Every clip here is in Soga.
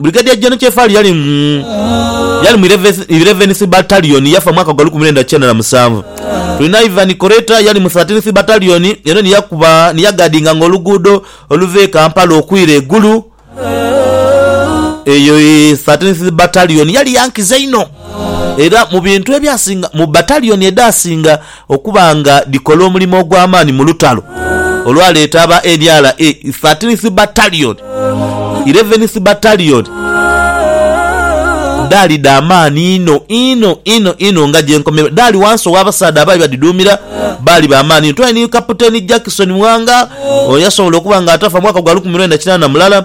Brigadier Gen Kyefali yali mu yali mu Ilevenisi Batalioni yafa mwaka gwa lukumi lwenda kyenda na musanvu. Tulina Ivan Koreta yali mu Thirteenth Batalioni eno ni yakuba ni yagadinganga oluguudo oluva e Kampala okwira e Gulu. Eyo i Thirteenth Batalioni yali ya nkizo inho era mu bintu ebyasinga mu Batalioni edhasinga okuba nga dhikola omulimo ogw'amaani mu lutalo olwaleeta aba NRA Thirteenth Battalion, Eleventh Battalion dhaali dha maani inho inho inho inho nga gye nkomerwa dhaali wansi ow'abasaadha abaali badhidhuumira baali ba maani inho. Twali ni Kapiteeni Jackson Mwanga, ono yasobola okuba nga atafa mu mwaka gwa lukumi lwenda kinaana mulala.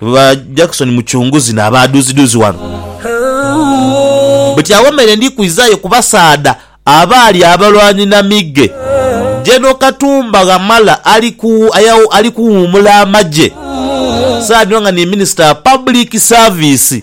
ba Jackson Mucunguzi n'abaaduzidhuzi ghano. Buti agho meere ndi kwizaayo ku basaadha abaali abalwanyi na mighe. General Katumba Wamala ali ku ali kuwuumula amagye, saadha dhino nga ni Minister wa Public Service.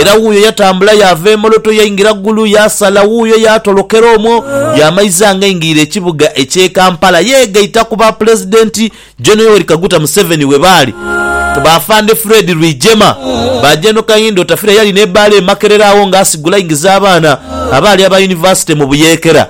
Era wuuyo yatambula yaava e Moloto yaingira Gulu, yaasala wuuyo yaatolokera omwo, yaamaiza ng'aingirire ekibuga eky'e Kampala. Yeegaita ku Bapulezidenti Gen. Yoweri Kaguta Museveni we baali, Baafande Fred Rwigyema, ba Gen. Kahinda Otafiire eyali n'ebbaala e Makerere agho ng'asigula aingiza abaana abaali aba yunivasite mu buyeekera.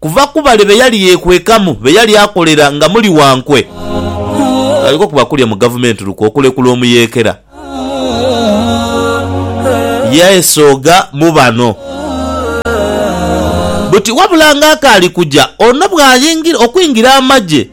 Kuva ku bale be yali yeekwekamu, be yali akolera nga muli wankwe, aliko kuba kulya mu gavumenti lukwe okulekula omuyeekera. Yaesogha mu bano buti wabula ng'akaali kuja ono bw'ayingira okwingira amagye.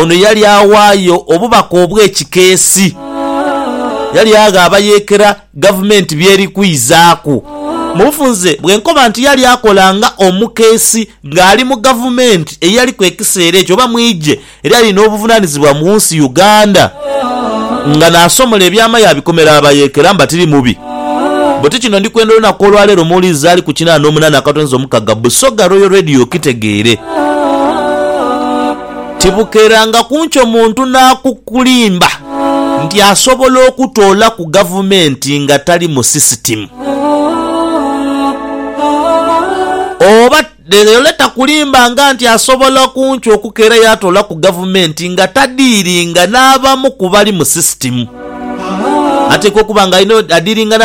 Ono yali awaayo obubaka obw'ekikeesi. Yali agha abayeekera gavumenti by'eri kwizaaku. Mu bufunze bwe nkoba nti yali akola nga omukeesi ng'ali mu gavumenti eyaliku ekiseera ekyo oba mu igye eryali n'obuvunaanizibwa mu nsi Uganda nga naasomola ebyama yaabikomera abayeekera mbatiri mubi. Buti kino ndi kwenda olunaku olwa leero muwulirize z'ali ku kinaana n'omunaana akatonzi omukaga Busoga Royal Radio okitegeere. Tibukeeranga ku nkyo muntu n'akukulimba nti asobola okutoola ku gavumenti nga tali mu sisitimu oba Dhereole takulimbanga nti asobola kunki okukeera yaatoolaku gavumenti nga tadiiringa n'abamu ku bali mu sisitimu. Ateekwa okuba nga alina adiiringa n'abali.